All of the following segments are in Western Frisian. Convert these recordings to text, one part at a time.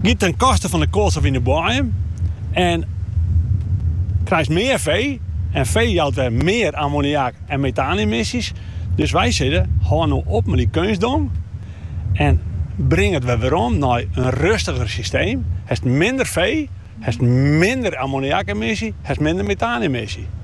Giet ten koste fan de koalstof yn de boaiem en krijst mear fee en fee jout wer mear ammoniak en metaanemissies. Dus wy sizze, hâld no op mei dy keunstdong en bring it wer werom nei in rustiger systeem. Hast minder fee, hast minder ammoniakemissies, hast minder metaanemissies.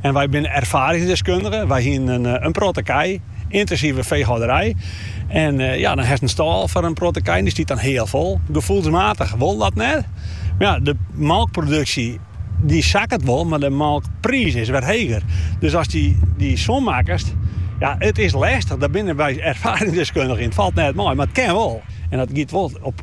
En wy binne erfaringsdeskundigen. Wy hienen in protte kij, yntinsive feehâlderij. En ja, dan hast in stâl foar in protte kij en dy stiet dan heal fol. Gefoelsmatich wol dat net. Maar ja, de molkproduksje dy sakket wol, mar de molkpriis is wer heger. Dus ast dy som makkest, ja, it is lestich. Dêr binne wy erfaringsdeskundige yn. It falt net mei, mar it kin wol. En dat giet wol op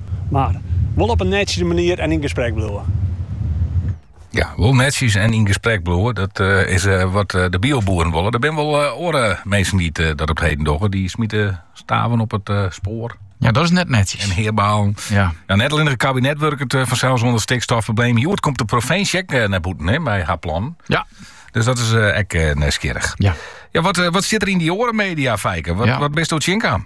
Mar wol op in nettere manier en yn gesprek bliuwe. Ja, wol netjes en yn gesprek bliuwe, dat is wat de bioboeren wolle. Der binne wol oare minsken dy't dat op 't heden dogge. Dy smite staven op it spoar. Ja, dat is net netjes. En heabalen. Ja. No, net allinne it kabinet wurket fansels oan it stikstofprobleem. Hjoed komt de provinsje ek nei bûten mei har plan. Ja. Dus dat is ek nijsgjirrich. Ja. Ja, wat, eh, wat sit der yn dy oare media, Fijke? Wat, ja. wat bist tsjinkaam?